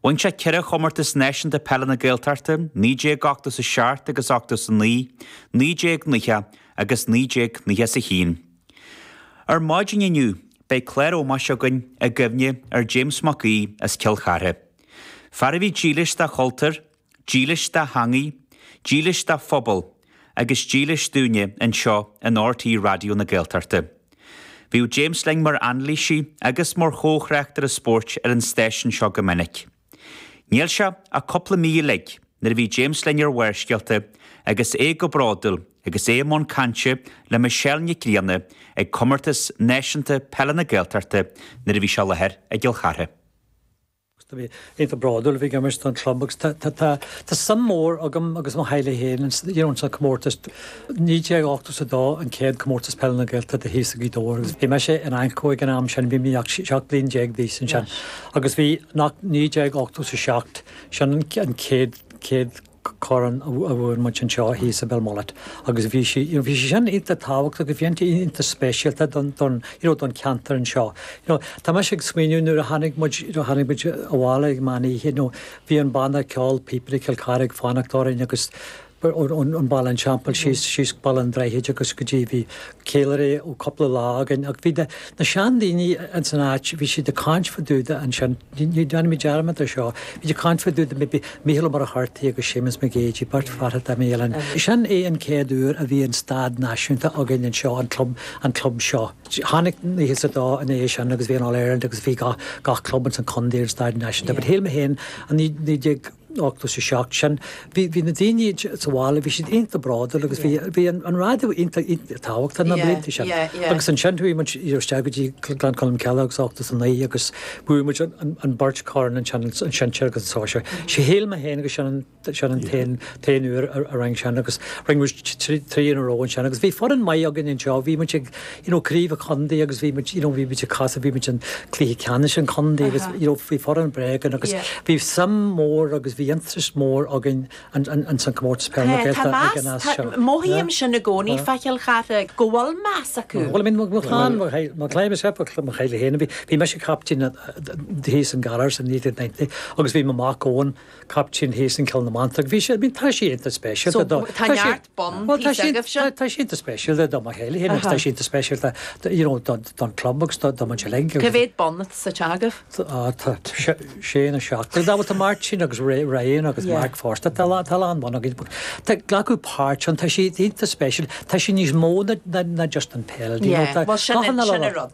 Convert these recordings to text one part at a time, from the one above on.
Bhain sé ceithre Chomórtas Náisiúnta Peile na Gaeltachta, 1987 agus 89, 1990 agus 1991. Ar maidin inniu beidh clár ómóis againn i gcuimhne ar James McHugh as Cill Chartha. Fear a bhí dílis dá chultúr, Dílis dá theangaidh, dílis dá phobal agus dílis dúinne anseo in RTÉ Raidió na Gaeltachta. Bhíodh James linn mar anailísí agus mar chomhthráchtaire spóirt ar an stáisiún seo go minic. Níl sé ach cúpla mí uilig nuair a bhí James linn ar Bharrscéalta agus é go bródúil agus é i mbun cainte le Michelle Nic Grianna ag Comórtas Náisiúnta Peile na Gaeltachta nuair a bhí sé ar láthair i gCill Chartha. Iontach bródúil a bhí ag achan duine sa chlub agus tá suim mór agam agus mo theaghlach féin ins an comórtas. Naoi déag ochtó is a dó an céad comórtas peile na Gaeltachta thíos i Gaoth Dobhair agus bhí mise in AnCO ag an am sin, bhí mé ach seacht bliain déag d'aois ansin agus bhí naoi déag ochtó is a seacht, sin an céad corn a bhuaigh muid anseo thíos i Belmullet agus bhí sí you know bhí sé sin iontach tábhachtach agus bhí sé iontach speisialta don don you know don cheantar anseo you know tá mise ag smaoineamh nuair a tháinig muid you know tháinig muid abhaile ag meán oíche you know bhí an banna ceol píopaí Cill Chartha ag fanacht orainn agus ón Baile an Teampaill síos síos Baile an Droichid agus go dtí bhí Ceiliúradh ó cúpla lá againn ach bhí na na sean daoine ins an áit, bhí siad ag caint fa dúda ansin, ní déanfaidh mé dearmad ar seo, bhí siad ag caint fa dúda maybe Mícheál Ó Muircheartaigh agus Séamus Mac Géidigh, beirt fear a tá imithe uainn. Sin é an céad uair a bhí an stáitse náisiúnta againn anseo, an club, an club seo. Tháinig nócha is a dó ina dhiaidh sin agus bhí an All Ireland agus bhí gach, gach club ins an condae ar an stáitse náisiúnta but shíl mé féin i naoi déag, ochtó is a seacht sin, bhí na daoine sa bhaile, bhí siad iontach bródúil agus bhí an raidió iontach tábhachtach na blianta sin. Agus ansin chuaigh muid isteach go dtí Gleann Cholm Cille agus ochtó is a naoi agus bhuaigh muid an beirt corn ansin, an sinsear agus an sóisear. Shíl mé féin agus sin an t-aon uair a rinneadh sin agus rinn muid trí uair in a row ansin agus bhí foireann maith againn anseo, bhí muid ag you know craobh an chontae agus bhí muid you know bhí muid ag casadh bhí muid an cluiche ceannais an chontae agus you know bhí foireann breá againn agus bhí suim mór agus bhí interest mór againn an an an san comórtas peil na Gaeltachta ag an am sin. mothaímse i gcónaí fá Chill Chartha go bhfuil meas acu. Bhuel I mean mo chlann mo chlann mo chlann myself mo mo chlann féin bhí bhí mise captaen thíos i nGaoth Dobhair san 1990 agus bhí mo mac Eoin captaen thíos i nGleann na Manta agus bhí sé I mean tá sé iontach speisialta do tá sé bonn píosa agaibhse. Bhuel tá sé iontach speisialta do mo theaghlach fhéin agus tá sé iontach speisialta you know don club agus do mo theaghlach. Cé mhéad bonn atá suite agaibh? Tá tá sé nó seacht. Bhuel tá Martin agus Ryan agus Mark fosta tá lá tá a lán bonn againn. Tá glacú páirt an tá sé iontach speisialta tá sí níos mó na just an peil. Bhuel sin sin rud.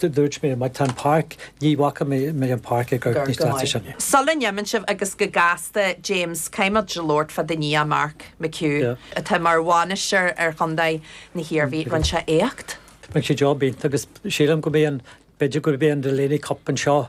Dúirt mé, Má tá an páirc, ní fhaca mé an páirc ag amharc níos deise. Sula n-imíonn tú agus go gasta, James, caithfidh muid labhairt fá do nia, Mark McHugh, atá mar bhainisteoir ar chontae na hIarmhí. Rinne sé éacht. Rinne sé job iontach agus sílim go mbeidh an, b'fhéidir go mbeidh an Delaney Cup anseo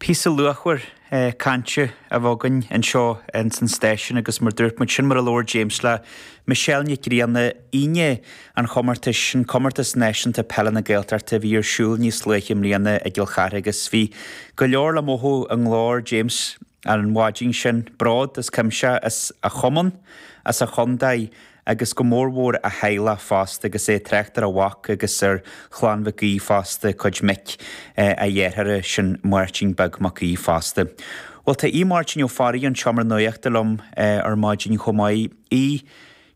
Píosa luachmhar cainte a bheadh againn anseo ins an stáisiún agus mar dúirt muid, sin mar a labhair James le Michelle Nic Grianna, Aoine an chomórtais, an Comórtas Náisiúnta Peile na Gaeltachta a bhí ar siúl níos luaithe i mbliana i gCill Chartha agus bhí go leor le mothú i nglór James an mhaidin sin, bród as cuimse as a chumann, as a chontae. agus go mórmhór a theaghlach fosta agus é ag trácht ar a mhac agus ar Chlann Mhic Aoidh fosta, cuid mic a dhearthára, sin Máirtín Beag Mac Aoidh fosta. Bhuel, tá Aodh Máirtín Ó Fearraigh ón tSeomra Nuachta liom ar maidin chomh maith. Aodh,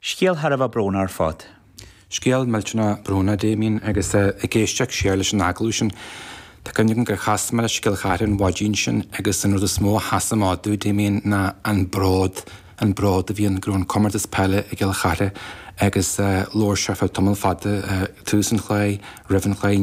scéal thar a bheith brónach ar fad. Scéal millteanach brónach, a Damien, agus ag éisteacht siar leis an agallamh sin, tá cuimhne agam gur chas mé leis i gCill Chartha an mhaidin sin agus an rud is mó a sheasann amach domh, Damien, ná an bród. an bród a bhí ann go raibh an comórtas peile i gCill Chartha agus labhair sé ar feadh tamall fada, tús an chluiche, roimh an chluiche, i